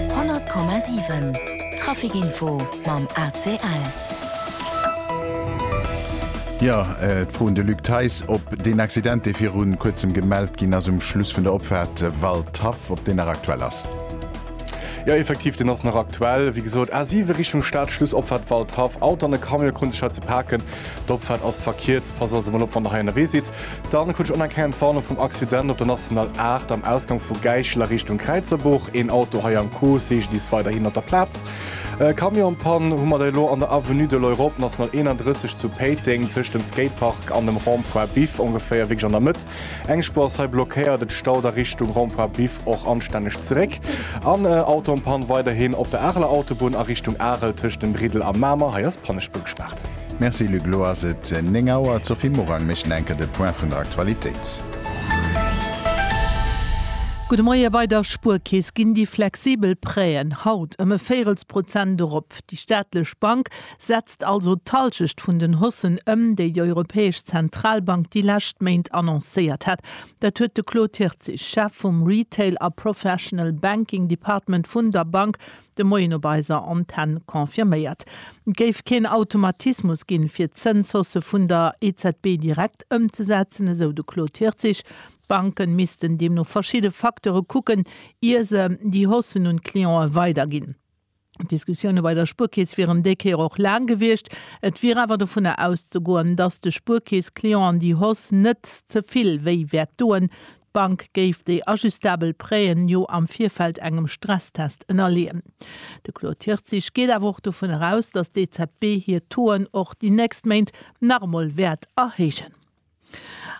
100,7 Trafic Info mam ACL. Jo, et froen de Luc Theis op deen Accident, dee viru Kuerzem gemellt ginn ass um Schluss vun der Opfaart Waldhaff, ob deen nach aktuell ass. Jo, effektiv, deen ass nach aktuell. Wéi gesot, A7 Richtung Stad, Schluss Opfaart Waldhaff. Auto an e Camion krunn sech hei ze paken. D'Opfaart ass verkierzt. Passt also mol op, wann der hei ënnerwee sidd. Dann krut ech onerkennend Warnung vum Accident op der National 8 am Ausgang vu Gäichel a Richtung Kräizerbuch. Een Auto hei am Coup, CGDIS weiderhin op der Plaz. E Camion am Pann hu mer da elo an der Avenue de l'Europe, National 31 zu Péiteng, tëscht dem Skatepark an dem Rond-point Biff, ongeféier wierklech an der Mëtt. Eng Spuer ass hei blockéiert, et staut a Richtung Rond-point Biff och anstänneg zeréck. An e Auto am Pann weiderhin op der Areler Autobunn a Richtung Arel, tëscht dem Briddel a Mamer, hei ass d'Pannespur gespaart. Merci Luc, elo ass et 9 Auer. D'Sophie Morang mécht nach eng Kéier de Point vun der Aktualitéit. Gudde Moie, Bei der Spuerkeess ginn déi flexibel Prêt'en haut ëm e Véirelsprozent erop. Déi staatlech Bank setzt also d'Halschecht vun den Haussen ëm, déi déi Europäesch Zentralbank déi lescht Méint annoncéiert hat. Dat huet de Claude Hirtzig, Chef vum Retail a Professional Banking Department vun der Bank, De Moien op eiser Antenn confirméiert. Et géif keen Automatismus ginn, fir d'Zënshausse vun der EZB direkt ëmzesetzen, esou de Claude Hirtzig. D'Banke missten deemno verschidde Facteure kucken, ier se déi Haussen un d'Clientë weiderginn. D'Diskussioune bei der Spuerkeess wieren déi Kéier och laang gewiescht. Et wier awer dovunner auszegoen, datt de Spuerkeess-Clienten déi Hausse net ze vill wéi wäert doen. D'Bank géif déi ajustabel Prêten jo am Virfeld engem Stresstest ënnerleeën. De Claude Hirtzig geet awer och dovun eraus, datt d'EZB hir Touen och déi nächst Méint nach emol wäert erhéijen.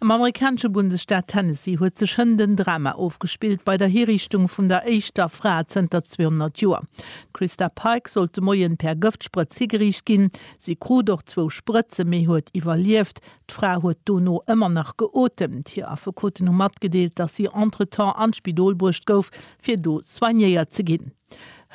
Am amerikanesche Bundesstaat Tennessee huet sech hënt en Drama ofgespillt bei der Hiriichtung vun der éischter Fra zënter 200 Joer. D'Christa Pike sollt de Moien per Gëftsprëtz higeriicht ginn. Si krut och zwou Sprëtze mee huet iwwerlieft. D'Fra huet dono ëmmer nach geotemt. Hir Affekoten hu matgedeelt, dass si entretemps an d'Spidol bruecht gouf, fir do soignéiert ze ginn.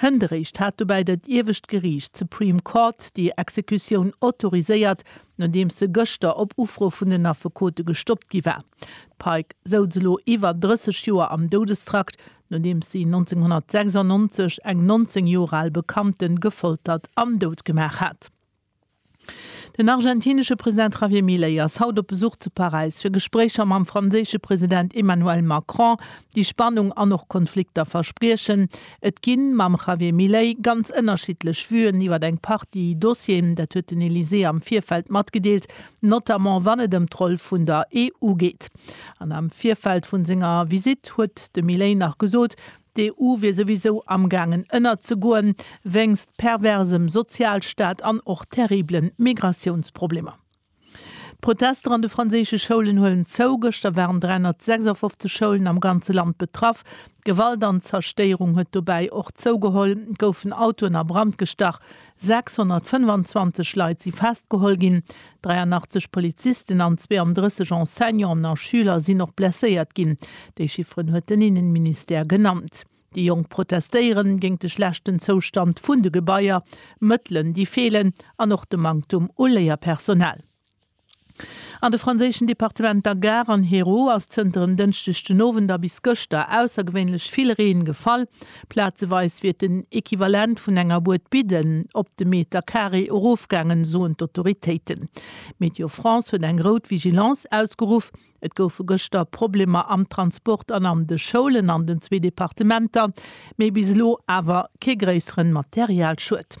Hënderéischt hat dobäi dat iewescht Geriicht, d'Supreme Court, déi Exekutioun autoriséiert, nodeems se gëschter op Ufro vun den Affekote gestoppt gi war. D'Pike souz elo iwwer 30 Joer am Doudestrakt, nodeems si 1996 eng 19 Joer al Bekannte gefoltert an dout gemaach hat. Den argentinesche President Javier Milei ass haut op Besuch zu Paräis, fir Gespréicher mam franséische President Emmanuel Macron, déi Spannung an och Konflikter verspriechen. Et ginn, mam Javier Milei, ganz ënnerschiddlech Vuen iwwer eng Partie Dossieren, dat huet den Elysée am Virfeld matgedeelt, notamment wann et ëm d'Roll vun der EU geet. An am Virfeld vu senger Visitt huet de Milei nach gesot, D'EU wier souwisou amgaangen ënnerzegoen, wéinst perversem Sozialstaat an och terriblen Migratiounsproblemer. D'Protester an de franséische Schoulen huelen zou, Gëschter waren 356 Schoulen am ganze Land betraff. D'Gewalt an d'Zerstéierung huet dobäi och zougeholl, goufen Autoen a Brand gestach, 625 Leit si festgeholl ginn, 83 Polizisten an 32 Enseignanten a Schüler sinn och blesséiert ginn. Déi Chifferen huet den Innenministère genannt. Déi Jonk protestéieren géingt de schlechten Zoustand vun de Gebaier, Mëttelen déi feelen an och de Manktum u Léierpersonal. An de franséischen Departementer Gard an Hérault ass zënter en Dënschdeg den Owend a bis gëschter aussergewéinlech vill Reen gefall. Plazeweis wier den Equivalent vun enger Bued Bidden op de Meter Carré erofgaangen, soen d'Autoritéiten. Météo France huet eng rout Vigilance ausgeruff. Et goufe gëschter Problemer am Transport an an de Schoulen an den zwee Departementer, mee bis elo awer kee gréisseren Materialschued.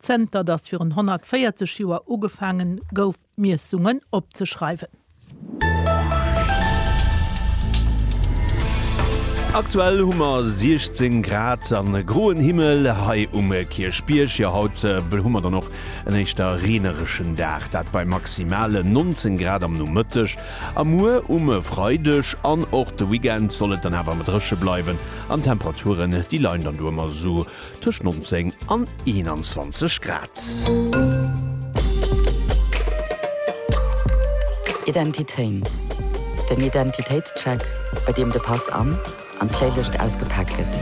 Zënter datt virun 140 Joer ugefaange gouf Miessungen opzeschreiwen. Aktuell hu mer 16 Grad an e groen Himmel hei um Kierchbierg. Jo haut hu mer dann och en éischter reenereschen Dag, dat bei maximale 19 Grad am Nomëtteg a muer um Freideg an och de Weekend soll et dann awer mat dréche bleiwen an d'Temperaturen déi leien dann do ëmmer esou tëscht 19 an 21 Grad. Identitéin, den Identitéitscheck, bei deem de Pass an an d'Playlëscht ausgepaakt gëtt.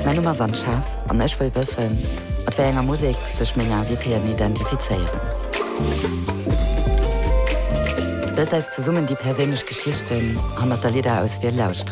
Mäi Numm ass Anne Schaaf an ech wëll wëssen, mat wéi enger Musek sech meng Invitéen identifizéieren. Loost eis zesummen déi perséinlech Geschichten hannert der Lidderauswiel lauscheren.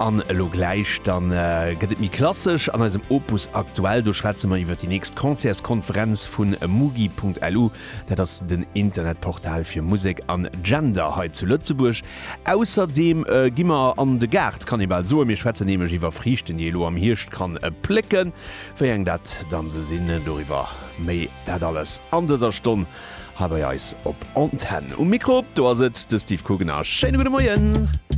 An elo gläich, da gëtt et méi klassesch an eisem Opus Aktuell. Do schwätze mer iwwer déi nächst Concertskonferenz vu mugi.lu. Dat ass den Internetportal fir Musek an Gender hei zu Lëtzebuerg. Ausserdeem gi mer an de Gaart, kann ee bal soen. Mir schwätzen nämlech iwwer Friichten, déi ee lo am Hierscht kann plécken. Wéi eng dat dann esou sinn, doriwwer méi. Dat alles an dëser Stonn hei bei eis op Antenn. Um Mikro, do ass et de Steve Kugener. Schéine gudde Moien!